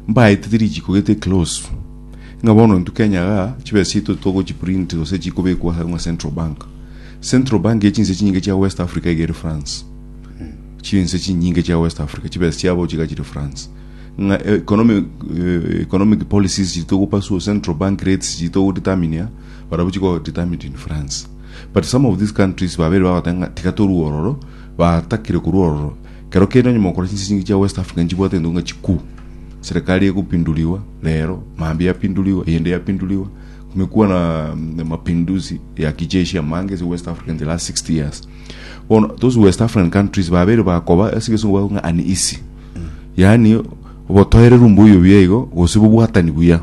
mbaetete richiiko gete ekilosu, ng'a bono intwe Kenya iga chibesa chiaito togochiprint gose chikobekwa ase ng'a Central Bank. Central Bank ya chinse chinyinge chia West Africa iga ere France. Chinse chinyinge chia West Africa chibesa chiabo chiga chire France. Ng'a economic, eh, economic policies chitogopasua Central Bank rates chitogodeterminia barabwo chiko determined in France. But some of these countries babere bagoteba ng'a tiga torue ororo, batakire korwa ororo Kero kende onye mokora chinsingi chia West Africa nchibwate entuko ng'a chikuu, serikali egopindurigwa rero, mambia yapindurigwa, eyende yapindurigwa, kumekuwa na mm, mapinduzi ya kijeshi amange ase West Africa in the last 60 years. Bono those West African countries babere bakoba ase egesungu bakoba ng'a uneasy. Yaani obotoereru mbuya obuya igo gose bobwatani buya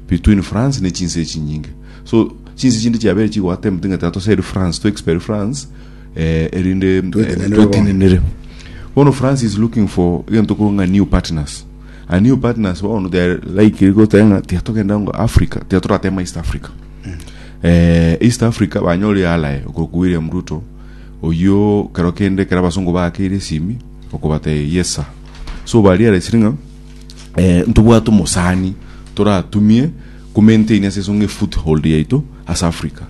between France ne chinse echinyinge. So chinse chinde chiabere chigoattempting'ete atoserie France, to expel France eh, erinde eh, Twetenenere bono. twetenenere bono france is looking for egento koro ng'a new partners a new partners bono they are likely goteba ng'a tiatogenda ngo africa tiatoratema east africa eh, east africa banyore yalae okoku william ruto oyio kero kende kera abasongo bakeire esimi okobata yes sir so bariaresire ng'a eh, ntobwate omosani toratumie Komaintaini ase esonga efoothold yaito ase Africa.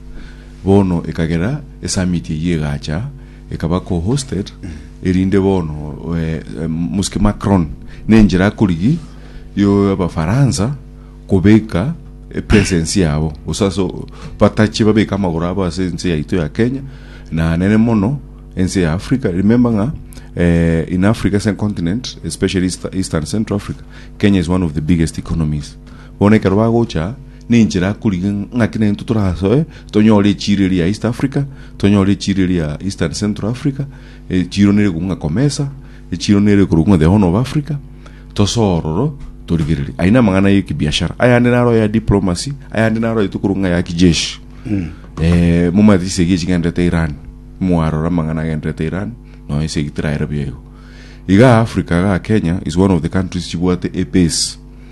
Bono ekagera esummit eyio egacha ekaba co-hosted erinde bono Msque Macron nenchera akorigia yo abafaransa kobeka epresence yabo gose ase batache babeke amagoro abo ase ense yaito ya Kenya na nene mono ense ya Africa. Remember ng'a in Africa as a continent especially East and Central Africa Kenya is one of the biggest economies. Bono ekero bagocha, ninche nakorigia ng'aki naintwe torasoe tonyore echiiro eria ya East Africa, tonyore echiiro eria ya East and Central Africa, echiiro nere ekorwa ng'a Comesa, echiiro nere ekorwa ng'a The Horn of Africa, tosoe ororo torigererie. Ayio namang'ana ya ekibiashara. Ayande naro aya diplomacy, ayande naro ayio tokorwa ng'a ya kijeshi. Eh, momanyete chisegi echi chigendererete Iran, mwarora amang'ana agendererete Iran, nonya chisegi tiraere buya igo. Igaa Africa igaa Kenya is one of the countries chibwate ebase.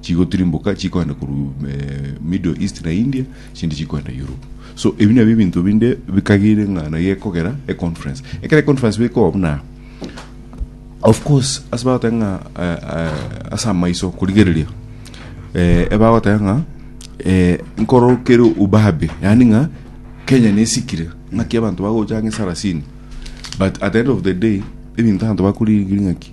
Chigotirimboka chikoenda korwa Middle East na India, chindi chikoenda Europe. So ebi nabio ebinto binde bikagire ng'a naye ekogera econference. Ekero econference bekoba buna of course ase bagoteba ng'a eh, eh, ase amaiso korigereria eh, ebagoteba ng'a eh, nkoro kere ubabe yani ng'a kenya nesikire ng'aki abanto bagocha ng'a esarasini but at the end of the day ebinto abanto bakorigereria ng'aki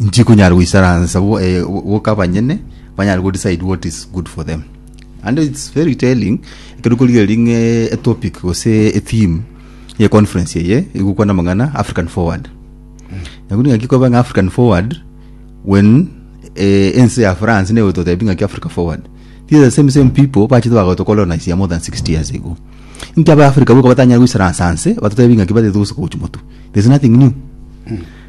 Nchikonyara goisaransa bo- eh, boka abanyene banyare go decide what is good for them and its very telling ekero korigereria ng'e etopic gose etheme ye conference eye igokwana amang'ana african forward nabo ningaki koba ng'a african forward when eh, ense ya france nigo etotebia ng'aki africa forward these are the same same people bachete bagotokolonisia more than 60 years ago inki aba africa boka batanyare goisaransa nse batotebia ng'aki batete gose gochi motu there's nothing new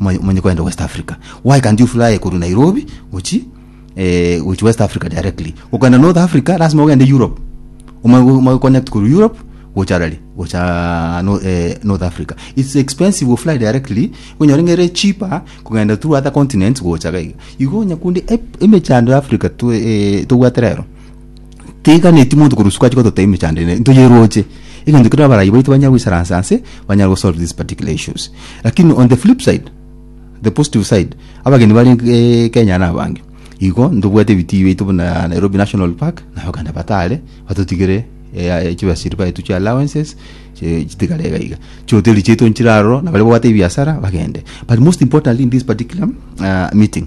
Omanye omanye kwenda West Africa. Why can't you fly koru Nairobi gochi eh, gochi West Africa directly? Okenda North Africa lazima ogende Europe. Omanye go- omanye connect koru Europe gocha rari gocha no, eh, North Africa. It's expensive go fly directly onyore ngere cheaper kogenda through other continents gocha gaiga. Igo nyakunde ep- emechando ya Africa twe eh, tobwate rero. Teiganetie monto korwa isiko ache gototebia emechando eye ntoyeroche, egento kere abarai baito banyare goisaransa ase, banyare gosolve these particular issues. Lakini on the flip side, the positive side, abageni bare eh, Kenya na abange, igo ntobwate ebitii biaito buna Nairobi National Park, na abaganda batare batotigere eh, chibasiri baito chia allowances, chi- chitigare iga iga. Chihoteli chiaito nchire aroro, na baria babwate ebiasara bagende. But most importantly in this particular uh, meeting,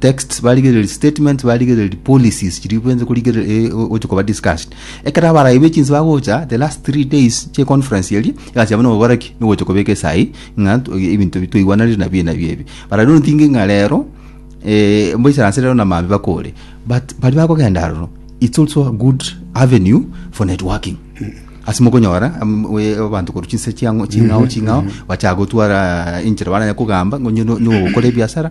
texts barigereria statements barigereria policies chiri bwenze kurigereria eh, o- gocha koba discussed ekero abaraibe chinse bagocha the last three days che conference eri egasi yabo noboraki nogocha kobeka esai ng'a tu- ebinto bi- twaigwananire nabi enabi ebi barabwo notinge ng'a rero eh, mboisaranse rero na mambia bakore but bari bakogenda aroro it's also a good avenue for networking ase mokonyora am- we- abanto korwa chinse chiang'o- ching'ao ching'ao bachaka gotwara enchera baranya kogamba ngonye no- nogokora ebiasara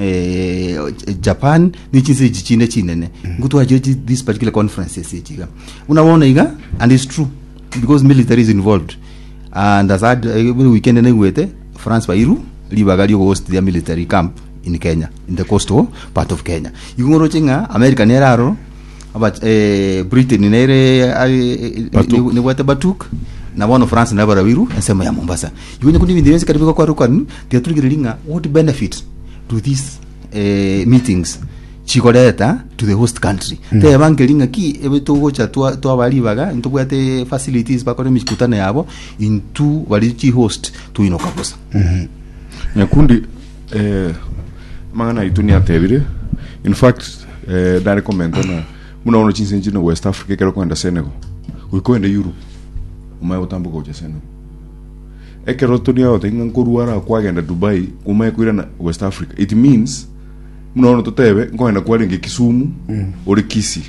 eh, japan ne chinse echi chinde chinene ngu twachire chi- this particular conferences echi iga buna bono iga and its true because military is involved and as ad- eh, buri weekend naigwete france bairu ribaga riogohost their military camp in kenya in the coastal part of kenya igo ngoroche ng'a america nere aro Aba- eh, britain nere eh, Batuk. nebwate batuk na bono france nabo barabiru ensemo ya mombasa igo nyakundi ebinto bionsi kare bigokwarokani tiga turigereria ng'a what benefit do these eh, meetings chigoreta to the host country mm. teba nkeri ng'a ki ebe togocha twa- twaba ribaga ntobwate facilities bakore emikutano yabo intu bari chi host toinoka bosa nyakundi Eh, amang'ana aito niatebire in fact eh, nare komenta na buna bono chinse nchine west africa ekero kwenda senegal goika kwenda europe omaye gotambuka gocha senegal ekero toni agotaki ng'a nkorwara kwagenda dubai omaye koirana west africa it means buna bono totebe nkogenda kwarenge kisumu ore kisi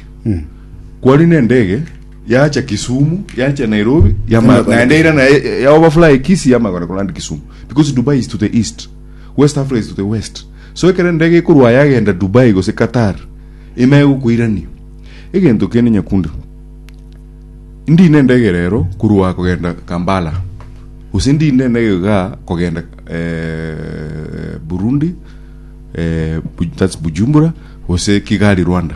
kwari nendege Yacha Kisumu, yacha Nairobi, yama Yama- naende ira naye ya overfly Kisii yama kona kuland Kisumu because Dubai is to the east, West Africa is to the west. So ekero ndege ekorwa yagenda Dubai gose Qatar, ime egokoirania. Egento kende Nyakundi, ndi nendege rero korwa kogenda Kampala gose ndi nendege iga kogenda eh, Burundi eh, Bu- that's Bujumbura gose Kigali Rwanda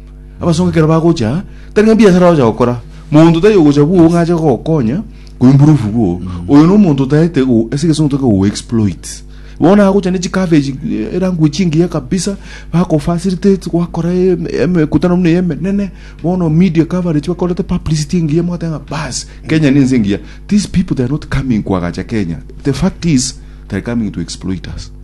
Abasongo ekero bagocha, tari ng'a mbiasara bagocha gokora, monto tari ogocha bwoo ng'a ache gokonya koimprove bwoo. Oyo no monto otaete go ase egesungu toke go exploit. Bono agocha ne chikabeji eh, eranguo chingiya kabisa, bako facilitate gwakora em- emekutano buna emenene, bono media coverage bakorete publicity engiya mwateba ng'a bas, Kenya ne ense engiya. These people they are not coming koagacha Kenya. The fact is, they are coming to exploit us.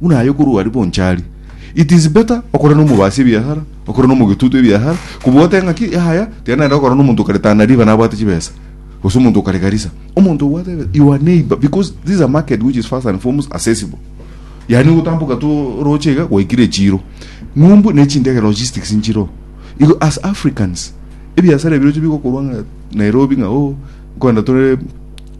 Buna aye okorua aria bonsi aria, it is better okore nomobaasi ebiasara, okore nomogetutu ebiasara, kobua otebe ng'aki yaya tiga naenda gokora nomonto okare Tana River nabwate chibesa, gose omonto okare Garissa. Omonto obwate ebesa, your neighbor, because this is a market which is first and foremost accessible. Yani ogotamboka tu oroche iga gwaikire echiro. Ng'umbu ne chindege logistics nchiro. Igo as Africans, ebiasara ebiroche bigokorwa ng'a Nairobi ng'a oh, nkwenda tore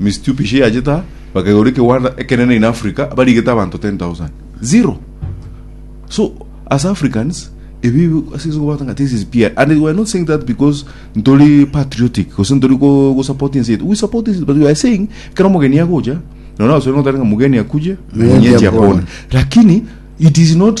Misitu Pishe yachete aa, bakaigoria ekegwanda ekenene in Africa, barigete abanto 10,000. Zero! So, as Africans, ebi ase inse kobwata ng'a this is PR. And we are not saying that because ntori patriotic, gose ntori ko, ko support ense yetu. We support ense yetu, but we are saying, ekero omogeni agocha, nonya abaswahili bagoteba ng'a mgeni akuje, mwenyeji apone. Lakini, it is not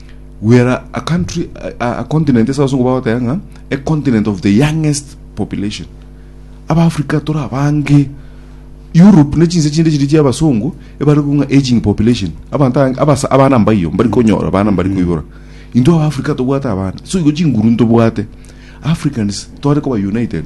Were a country, a, a continent ase abasongo bagoteba ng'a a continent of the youngest population abaafrika tore abange europe ne chinse chinde chiri chiabasongo ebare kong'a aging population abanto abange- abasa- abana mbayo mbari konyora abana mbari koibora intwe abaafrika tobwate abana so igo chinguru ntobwate africans tware koba united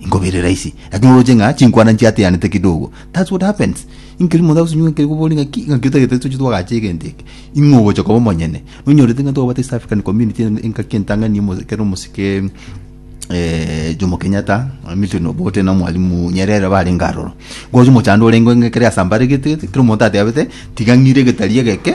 Inko bire rahisi, lakini oroche ng'a chinkwana nchiateanete kidogo. That's what happens. Inkeri monto agosenyuka inkeri kobori ng'a ki ng'aki otagete toche twagacha egento eke. Ing'o ogocha koba omonyene. Nonyorete ng'a twabwate East African Community en- engaki entang'ani omo- ekero omosike eh, Jomo Kenyatta, Milton Obote na Mwalimu Nyerere barenge aroro. Gocha omochando orenge ng'a ekero yasambaregete gete, kera omonto atebete tiga ng'ire egetari egeke,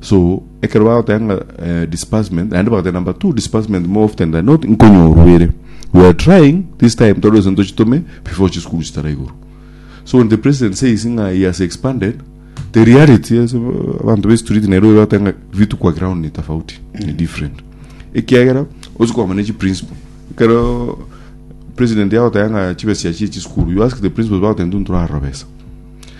So ekero bagoteba ng'a eh, disbursement naende bagoteba number two disbursement more often than not nkonyorwa ere we are trying this time tore ase ntochitume before chisukuru chitara igoro so when the president says ng'a he has expanded the reality ase abanto be street nairobi bagoteba ng'a vitu kwa ground ni tofauti ni different ekiagera osi kwamana chi principle ekero president yagoteba ng'a chibesa chia chie chisukuru you ask the principal bagoteba ntunturarora besa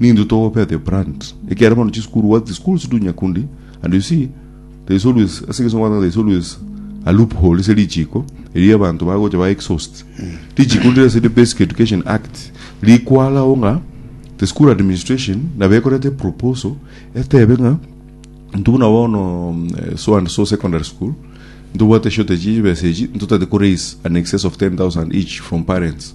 Nintwe togopea the brand ekero bono chisukuru what the schools do Nyakundi and you see there is always ase egeso nkobwatanga there is always a loophole ase richiko erio abanto bagocha ba exhaust richiko ndire ase the basic education act rikwalao ng'a the school administration nabo ekorete proposal etebe ng'a intwe buna bono mm, eh, so and so secondary school ntobwate shortage y'ebesa echi ntotete ko raise an excess of 10000 each from parents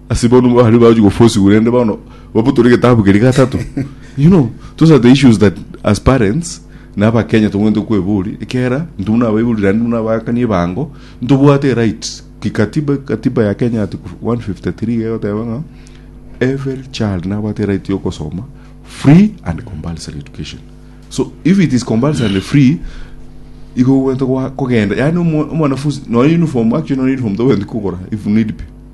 Ase bono mbare bagochi gofosigwa rende bono babotore getabu keria gatato you know those are the issues that as parents na abakenya tongwente kwebori ekiagera ntu buna abaibori randi buna abakani ebango ntobwate eright kikatiba katiba ya kenya ati 153 egoteba ng'a every child nabwate right yokosoma free and compulsory education so if it is compulsory and free igo gwente kwa- kogenda yani omwa- omwanafunzi noyo uniform actually noyo uniform togwendi kogora if need be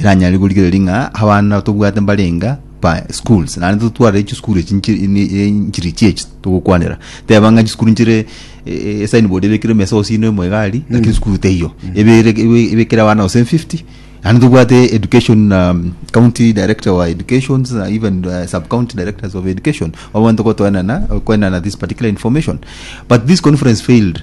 eranyare korigereria ng'a abana tobwate mbarenga pa schools naende totware chisukuru echi nchi- ni- eh, nchirichi echi togokwanera teba ng'a chisukuru nchire eh, eh, esignboard ebekirwe mesa gose ime ime egari lakini sukuru teiyo ebere ebe- ebekere abana gose 50 naende tobwate education um, county director wa educations na even uh, sub county directors of education abwo banto gotoenana koenana this particular information but this conference failed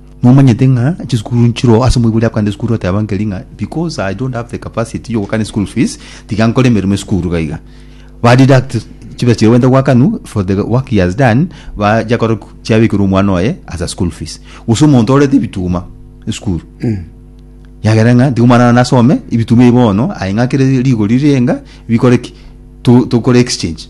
Nomanyete ng'a chisukuru nchiroo ase omoibori akoenda esukuru ateba nkeri ng'a because I don't have the capacity yogokana school fees tiga nkore emeremo esukuru iga iga ba deduct chibesa chiria baenta goakanwa for the work he has done bacha kore chiabekerwa omwana oye as a school fees gose omonto orete ebituma esukuru yagera ng'a tiga omwana one nasome ebituma ebi bono aye ng'akere rigori rirenga bikore ki to- tokore exchange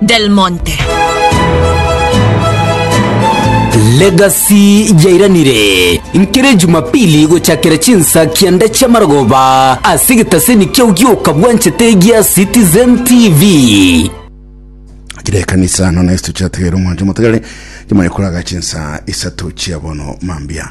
Del Monte. Legacy yairanire nkere Jumapili gochakera chinsa kianda chia marogoba ase egetaseni kiao gioka bwanchete gia Citizen TV. Chire ekanisa nono esto chiategere omwancho motegere chimanye koraga chinsa isato chia bono mambia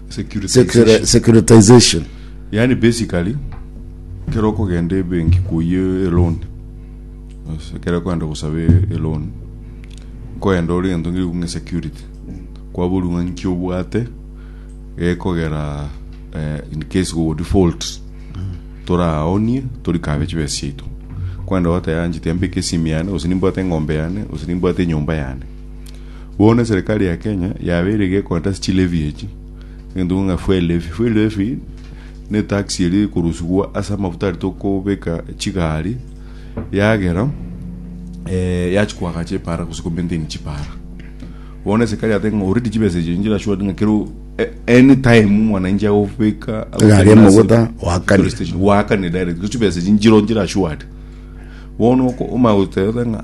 Securitization. securitization Yaani basically kero okogenda ebenki koyia eloan ase kero okogenda gosaba e- eloan nkoenda ore gento ngeiku ng'a security kwaborwa ng'a nki obwate gekogera eh, in case go default toraonie torikabe chibesa chiaito kwenda goteyanchete mbeke esimi yane gose nimbwate eng'ombe yane gose nimbwate enyomba yane Bono eserekari ya Kenya yabeire iga egontasi chilevi echi. Egento ng'a fuel levy. Fuel levy ne tax eria ekorusigwa ase amafuta aria tokobeka chigari yagera eh, yachi koagacha epara gose komaintain chipara bono esekari yate ng'a already chibesa echi nchira sure ng'a kero a- anytime mwananchi agobeka Egari y'amaguta, wakane. wakane direct gose chibesa echi nchiro nchira sure bono oko- omanya goteba ng'a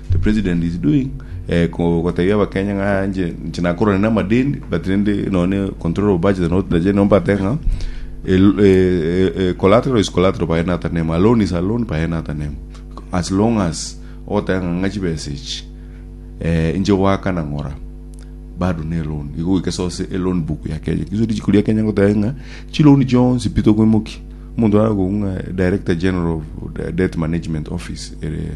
The president is doing eh, ko- koteebia abakenya ng'a nche nche nakorane na amadeni but rende nonye control of budget not the general mbate ng'a el- eh, eh, eh, collateral is collateral by another name a loan is a loan by another name as long as ogoteba ng'a ng'a chibesa echi eh, inche goaka na ng'ora bado ne loan igo goika sose e loan book ya kenya iso richiko ria kenya ngoteba ng'a chi loan chionsi pi tokoimokia omonto arakoigwa ng'a director general of debt management office ere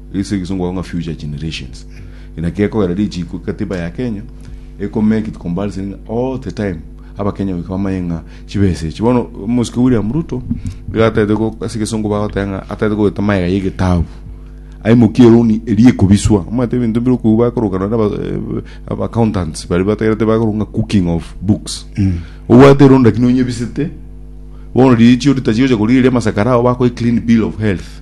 Ase egesongo bakobaa ng'a future generations. Inaki gekogera richiiko egatiba ya Kenya eko make it compulsory ng'a all the time abakenya goika bamanye ng'a chibesa echi. Bono omosike William Ruto iga atagete go ase egesongo bagoteba ng'a atagete gogeta magega ya egetabu aimokie eroni eria ekobiswa. Omanyete ebinto bire okobua bakoroka nonye na aba eh, aba accountants baria batagerete bakoroka ng'a cooking of books. Obwate eroni lakini onyebisete bono riichio ritachigocha korigereria amasakara ao bakoe clean bill of health.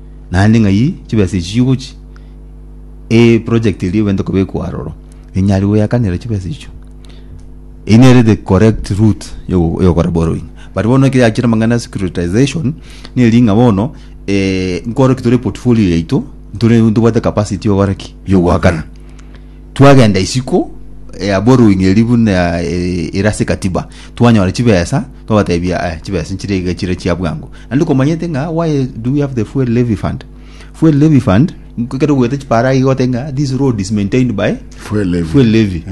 naende ng'ai chibesa echi chigochia, eproject eria egwete kobekwa aroro, enyare goyakanera chibesa echio. Eyio nere the correct route ya ogo- ya ogokora borrowing. But bono ekero yachire amang'ana ya securitisation, neri ng'a bono nkore ki tore portfolio yaito, ntore ntobwate capacity ya ogokora ki? Ya ogoakana. Twagenda isiko ya boruing'eri buna ere ase katiba, twanyora chibesa, twabatebia eh, chibesa nchire iga chire chia bwango. Naende komanyete ng'a why do we have the fuel levy fund? Fuel levy fund, kero goeta chipara iga gote ng'a this road is maintained by Fuel levy. fuel levy.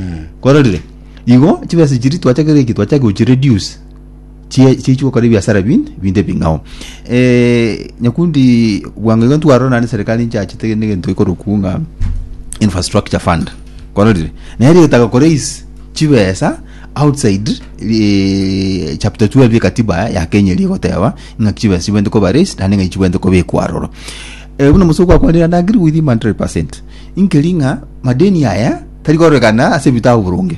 Kororire? Igo chibesa chiri twachakire ki twachaka gochi reduce. chie chichi gokora ebiasara binde binde bing'ao eh, nyakundi bwango igo ntwarora naende serikali nchachete negento gekorokwu ng'a infrastructure fund kororire naye rigetaka koraise chibesa outside eh, chapter 12 ekatiba ya kenya eri egoteba ng'a chibesa chibwente koba raised naende ng'a chibwente kobekwa aroro eh, buna mosoko akwanire and I agree with him 100% inkeri ng'a madeni aya tari kororekana ase ebitabu boronge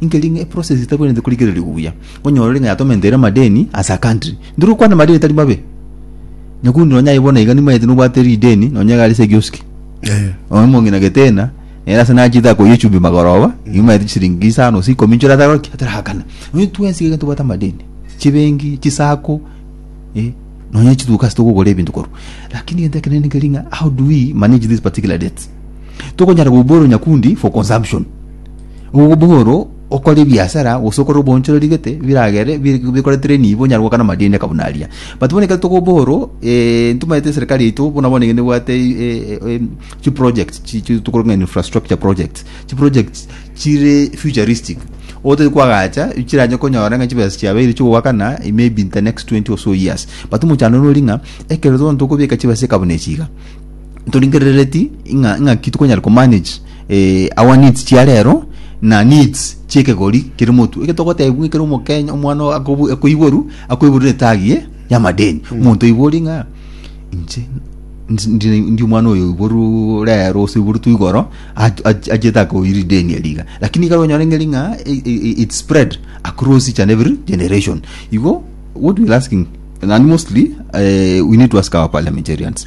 Inkeri ng'a eprocess etabwenerete korigereria buya, onyore ng'a yatomenteire amadeni as a country. Ndiri gokwana amadeni tari mabe. Nyakuri nonya aye bono iga nimaete nobwate rideni nonya iga are ase ekioski. Eh. Oyo omong'ina getena, ere ase nachete akoyia echumbi magoroba, nimaete chisiringi isano gose ikomi nchore atagora ki? Ataragakana. Onye twensi iga ntobwate amadeni, chibenki, chisako, eh, nonya chiduka ase togokora ebinto korwa. Lakini egento ekenene nkeri ng'a how do we manage these particular debts? Tokonyara kobua ore nyakundi for consumption. Oboboro okore ebiasara gose okore obonchoreri gete biragere bi- bikoretere nibo nyare gokana amadeni aka buna aria but bono ekero toka oboro eh, ntomaete eserikari yaito bono bono nigo nebwate eh, eh, em, chiprojects chi- chi- tokore ng'a infrastructure projects chiprojects chire futuristic otari kwagacha chiranye konyora ng'a chibesa chiabeire chigoakana maybe in the next 20 or so years but omochando nori ng'a ekero bono tokobeka chibesa eka buna echi iga ntoringerereti ng'a ng'aki tokonyara komanage eh, our needs chia rero na needs chiekegori kere motu eke togotebwa ng'a kere omokenya omwana oo akobu- akoiboru akoiborire etagi ye yamadeni omonto oibori ng'a inche ndi- ndi- ndi omwana oyo oiboru rero gose oiboretwe igoro ach- ach- achete akoiri ideni eria iga lakini ekero onyore ng'eri ng'a i- i- it spread across each and every generation igo what we're asking naende mostly eh, we need to ask our parliamentarians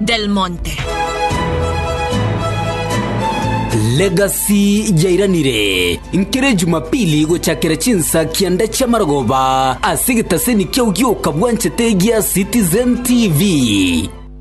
Del Monte. Legacy yairanire nkere Jumapili gochakera chinsa kianda chi'amarogoba ase egetaseni kia Ogioka Bwanchete gia Citizen TV.